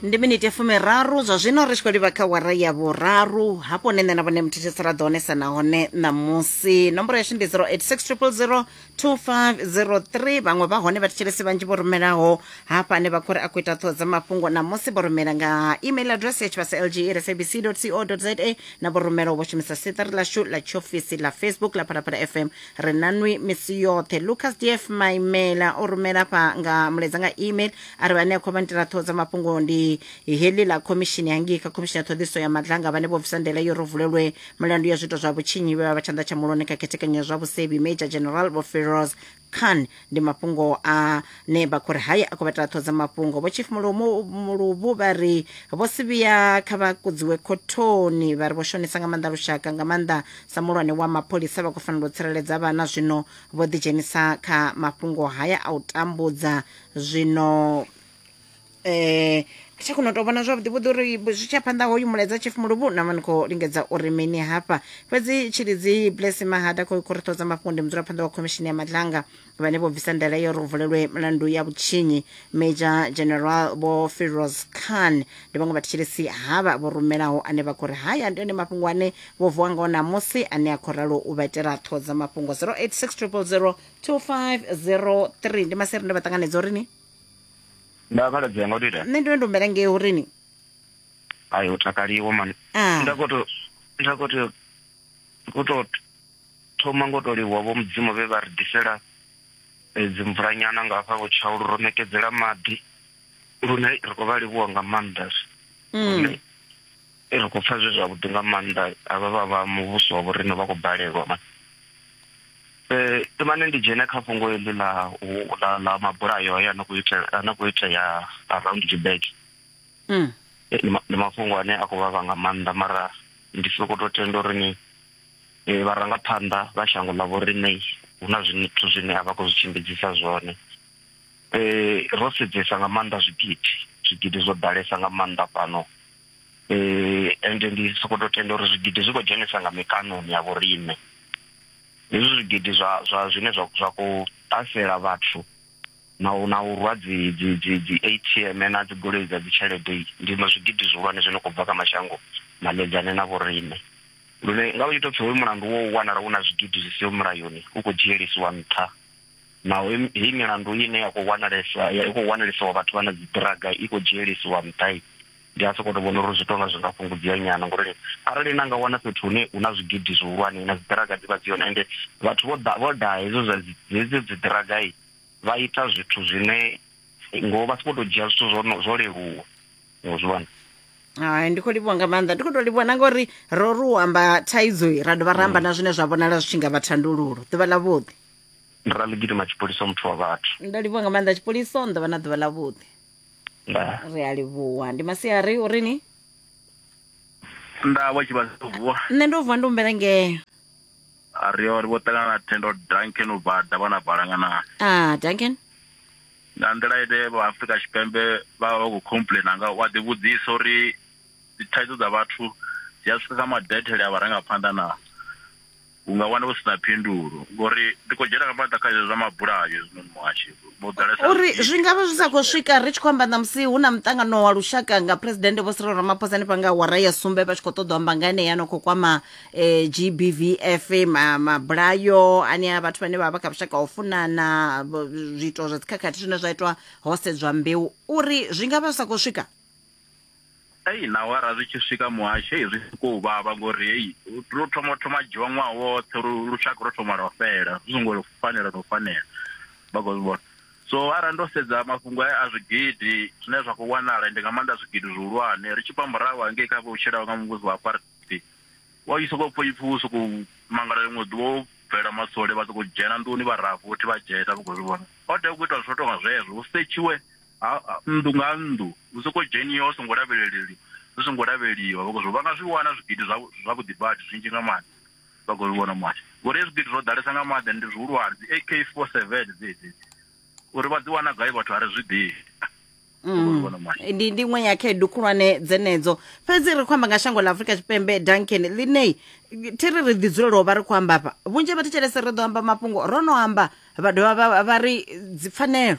ndi miniti ya fumiraru zwa zwino ri tshi khou livha kha wara ya vhuraru hafho ne nṋe na vhone muthethesi ra ḓo onesa nahone ṋamusi nomboro yashu ndi 0860 2503 vhaṅwe vha hone vhathetshelesi vhanzhi vho rumelaho hafha ane vha khou ri a khou ita ṱhoho dza mafhungo ṋamusi vho rumela nga email address ya tshivhasa lg iri sabc co za na vho rumelaho vho shumisa siṱari ḽashu ḽa tshiofisi ḽa facebook ḽa phalaphala fm ri na nwi misi yoṱhe lucas df maimela o rumela fha nga muledza nga email a ri vhane a khou vha nitela ṱhoho dza mafhungo ndi heḽi ḽa khomishini hangei kha khomishini ya ṱhoḓiso ya madlanga vhane vho bvisa ndela yo ro vulelwe mulandu ya zwiito zwa vhutshinyi vhe vha vha tshanḓa tsha muloni kha khethekanyo ya zwa vhusebi major general vho feroz khan ndi mafhungo a ne vha khou ri haye a khou vha taṱho dza mafhungo vho chief Mulumu- muluvhu vha ri vho sivhiya kha vha kudziwe khothoni vha ri vho shonisa nga maanḓa lushaka nga maanḓa sa muhulwane wa mapholisa vha khou fanela u tsireledza vhana zwino vho ḓidzhenisa kha mafhungo haya a u tambudza zwino eh tsha kona u tou vhona zwavhuḓi vhuḓi uri zwi tsha phanḓa hoyu mulaedza chief muluvhu na mani khou lingedza uri mini hafha fhedzi tshilidzi blessing mahada khou khou ri ṱhodza mafhungo ndi mudzulaphanḓa wa khomishini ya madlanga vhane vho bvisa ndaela ya uri hu vulelwe milandu ya vhutshinyi major general vho firoz khan ndi vhaṅwe vhathetshelesi havha vho rumelaho ane vha khou ri haya ndi one mafhungo ane vho vuwa ngao ṋamusi ane a khou ralo u vha itela ṱhodza mafhungo 086 000 2503 ndi maseri ndo vha ṱanganedza uri ni nda khaladzi yanga utita nṋe ndo ndo mbela ngei urini ayi u takaliwa mani ah. nda koto nda koto koto thoma ngo to livhuwa vho mudzimu vhe vha ri ḓisela eh, dzimvulanyana nga hafha vhutshaulu ro ṋekedzela maḓi lune ri khou vha livhuwa nga maanḓa mm. lune Ri khou pfa zwi zwavhuḓi nga maanḓa havha vha vha muvhuso wa vhorine vha khou balelwa man eh, imane ndi dzhene kha fhungo heḽi ḽa ḽa ḽa mabulayo aya no khou itea no khou itea around Joburg mm. eh, ndi mafhungo ane a khou vhavha nga maanḓa mara ndi soko to tenda uri ni eh, vharangaphanḓa vha shango ḽa vhorine hu na zwithu zwine a vha khou zwi tshimbidzisa zwone eh, ro sedzesa nga maanḓa zwigidi zwigidi zwo ḓalesa nga maanḓa fhano eh ende ndi soko to tenda uri zwigidi zwi khou dzhenisa nga mikanoni ya vhorine hezwi zwigidi zwa zwa zwine zwa zwa khou ṱasela vhathu na u na u rwa dzi dzi dzi dzi ATM na dzi goloi dza dzi tshelede ndi ma zwigidi zwihulwane zwino khou bva kha mashango maledzane na vhorine lune nga u ita pfhi hoyu mulandu wo wanala hu na zwigidi zwi siho mulayoni u khou dzhielisiwa nṱha. na hei milandu ine ya khou wanalesa ya khou wanalesiwa vhathu vha na dzi draga i khou dzhielisiwa nṱha i ndi a sokoto vhona uri zwi tonga zwi nga fhungudzea nyana ngori arali na nga wana fhethu hune hu na zwigidi zwihulwane na dzi draga dzi vha dzi hone ende vhathu vho ḓa vho ḓa hedzo zwa hedzo dzi draga i vha ita zwithu zwine ngo vha sokoto dzhia zwithu zwo zwo leluwa ngo zwi vhona hai ndi khou livhuwa nga maanḓa ndi khou tou livhuwa na ngori ro ri u amba thaidzo ra dovha ra amba mm. na zwine zwa vhonala zwi tshi nga vha thandululo ḓuvha ḽa vhuḓi ndi raligidima tshipoliso muthu wa vhathu ndo livhuwa nga maanḓa tshipoliso ni ḓo vha na ḓuvha ḽa vhuḓi nda ri a livhuwa ndi masiari uri ni nda vha tshi vha vuwa nṋe ndo vuwa ndi humbela ngeo a ri yo ri vho ṱangana na thendo duncan u bva davha na balangana ah duncan nga nḓila ine vha afrika tshipembe vha vha vha khou complaina nga wa ḓi vhudzisa uri dzi thaidzo dza vhathu dzi a swika kha madethele a vharangaphanḓa na U nga wana hu si na phindulo ngori ndi khou dzhena nga maanḓa kha izwo zwa mabulayo hezwinoni muhashi vho ḓalesa uri zwi nga vha zwi sa khou swika ri tshi khou amba ṋamusi hu na muṱangano wa lushaka nga presidennde vho Cyril Ramaphosa hanefha nga awara ya sumbe vha tshi khou ṱoḓa u amba nga enea no khou kwama um eh, GBVF mabulayo ane a vhathu vhane vha vha kha vhushaka ho funana zwiito zwa dzikhakhathi zwine zwa itwa ho sedzwa mbeu uri zwi nga vha zwi sa khou swika Ei na awara zwi tshi swika muhasho ei zwi siko u vhavha ngori ei ro thoma thoma dzhiwa ṅwaha woṱhe lushaka ro thoma lwa fela zwi songo fanela no fanela vha khou vhona so arali ndo sedza mafhungo a zwigidi zwine zwa khou wanala ndi nga maanḓa zwigidi zwihulwane ri tshi bva murahu hangei kha vhutshelaho nga muvhuso wa apartheid wa i sokou pfha ipfhi u sokou mangala ḽiṅwe ḓuvha wo bvela masole vha sokou dzhena nḓuni vha raha futhi vha dzhena vha khou zwi vhona o tea u ita zwithu tonga zwezwo hu setshiwe ha nnḓu nga nnḓu hu soko dzheniwa hu songo lavheleleli hu songo lavheliwa vha khou vha nga zwi wana zwigidi zwa zwavhuḓi badi zwinzhi nga maanḓa vha khou zwi vhona mwana ngori hezwi zwigidi zwo ḓalesa nga maanḓa ndi zwihulwane dzi AK 47 dzedzi uri vha dzi wana gai vhathu a ri zwi ḓivhi Mm. ndi ndi iṅwe ya khaedu khulwane dzenedzo fhedzi ri khou amba nga shango ḽa afurika tshipembe duncan ḽine thi ri ri ḓi dzulela u vha ri khou amba afha vhunzhi ha vha thetshelese ri ḓo amba mafhungo ro no amba vha dovha vha- vha ri dzipfanelo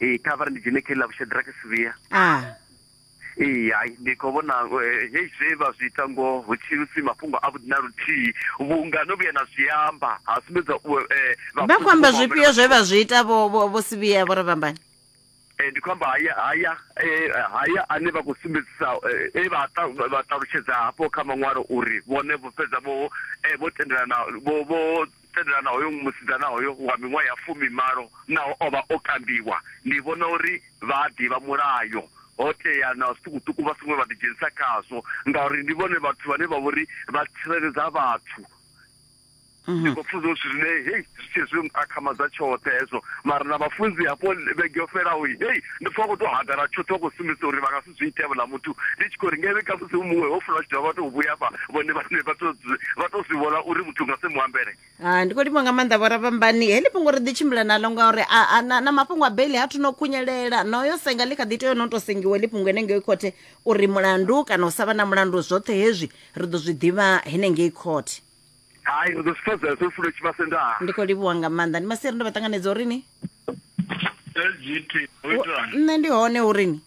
ee kha vhari ndi dzhene khe ḽa vhushedrake sivhiya ee hai ndi khou vhona eh, hei zwe vha zwi ita ngoho hu tshi si mafhungo a vhuḓi na luthihi vhunga no vhuya na zwi amba ha sumbedza eh, vha khou amba zwifhio zwe vha zwi ita vho sivhiya vho ri vhambani Eh, ndi khou amba haya haya eh, haya ane vha khou sumbedzisa eh, e vha ṱalutshedza hafho kha maṅwalo uri vhone vho fhedza vho vho tendelana vho vho tendelana hoyo musidzana hoyo wa miṅwaha ya fumimalo naho o vha o kambiwa. Ndi vhona uri vha a ḓivha mulayo, ho tea na zwiṱukuṱuku vha songo vha ḓidzhenisa khazwo ngauri ndi vhone vhathu vhane vha vhori vha tsireledza vhathu. Ndi khou pfha zwithu zwine hei zwi tshi zwi akhamadza tshoṱhe hezwo mara na vhafunzi hafho vhege yo fhelaho hei ndi pfha vha khou tou hagara tshoṱhe vha khou sumbedzisa uri vha nga zwi itea vhuḽa muthu ndi tshi khou ri ngavhe kha musi u muṅwe ho funa vha tshi dovha vha tou vhuya vha vhone vhane vha to vha to zwi vhona uri muthu nga se mu ambele ah, ndi khou livha nga maanḓa vhoravhambani heḽi fhungo ri ḓi tshimbila nalo ngauri na, na mafhungo a beli ha thu no khunyelela noyo senga ḽi kha ḓi tea no to sengiwa ḽi fhungo henengei khothe uri mulandu kana u sa vha na mulandu zwoṱhe hezwi ri ḓo zwi ḓivha henengei khothe hai ri ḓo zwi fhedzela zwo fulo tshivhase ndaa ndi khou livhuwa nga maanḓa ndi masiri ndo vha ṱanganedza uri ni nṋe ndi hone uri ni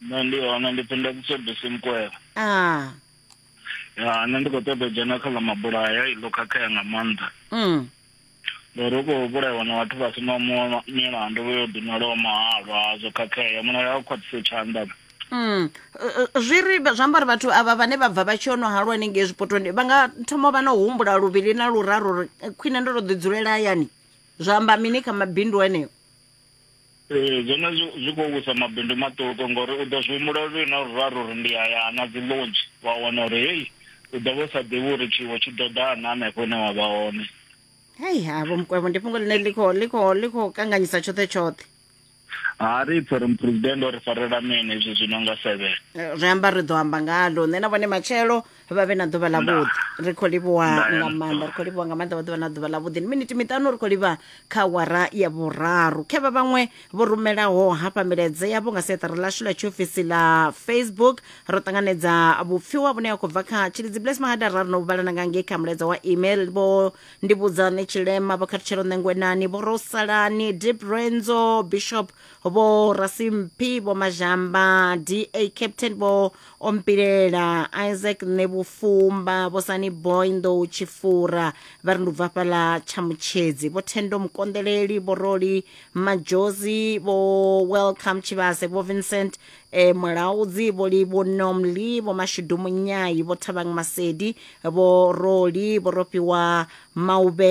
nṋe ndi hone ndi pfi ndakiso bisi mukwela ah ya nṋe ndi khou ṱoḓa u dzhena kha ḽa mabulaya iḽo khakhea nga maanḓa mm. ngori hu khou vhulaiwa na vhathu vha si na mu- milandu vho yo ḓinwalaho mahalwa hazwo khakhea mulayo a u khwaṱhise tshanḓa Mm. Uh, uh, zwi ri zwi amba uri vhathu avha vhane vha bva vha tshi yo no halwa hanengei zwipotoni vha nga thoma vha no humbula luvhili na luraru uri eh, khwine ndo to ḓi dzulela hayani zwa amba mini kha mabindu eneo Ee, zwone zwi zwi khou wisa mabindu maṱuku ngori u ḓo zwi humbula luvhili na luraru uri ndi a ya na dzi lodge wa wana uri hei u ḓo vha u sa ḓivhi uri tshiwo tshi ḓo ḓa na hanefho hune wa vha hone hei ha vho mukwevho ndi fhungo ḽine ḽi khou ḽi khou ḽi khou kanganyisa tshoṱhe tshoṱhe ha ri pfhi uri muphuresidennde o ri farela mini izwi zwi no nga seven Eh, zwi amba ri ḓo amba ngalo nṋe na vhone matshelo vha vhe na ḓuvha ḽa vhuḓi ri khou livhuwa nga maanḓa ri khou livhuwa nga maanḓa vha ḓuvha na ḓuvha ḽa vhuḓi ndi miniti miṱanu ri khou livha kha wara ya vhuraru khe vha vhaṅwe vho rumelaho hafha milaedza yavho nga seṱari ḽashu ḽa tshiofisi ḽa facebook ro ṱanganedza vhupfiwa vhune ha khou bva kha tshilidzi bles mahada ra ri no vhalana nga ngei kha mulaedza wa email vho ndivhudzane tshilema vho khathutshelo ṋengwenani vho rosalani deep renzo bishop vho rasimphi vho mazhamba da captain vho ompilela isaac ṋevhufumba vho sani boy nḓou tshifura vha ri ndi ubva fhaḽa tshamutshedzi vho thendo mukonḓeleli vho roli majozi vho welcome tshivhase vho vincent e mulaudzi vho li vho nomli vho mashudu munyayi vho thavhang masedi vho roli vho rofhiwa maube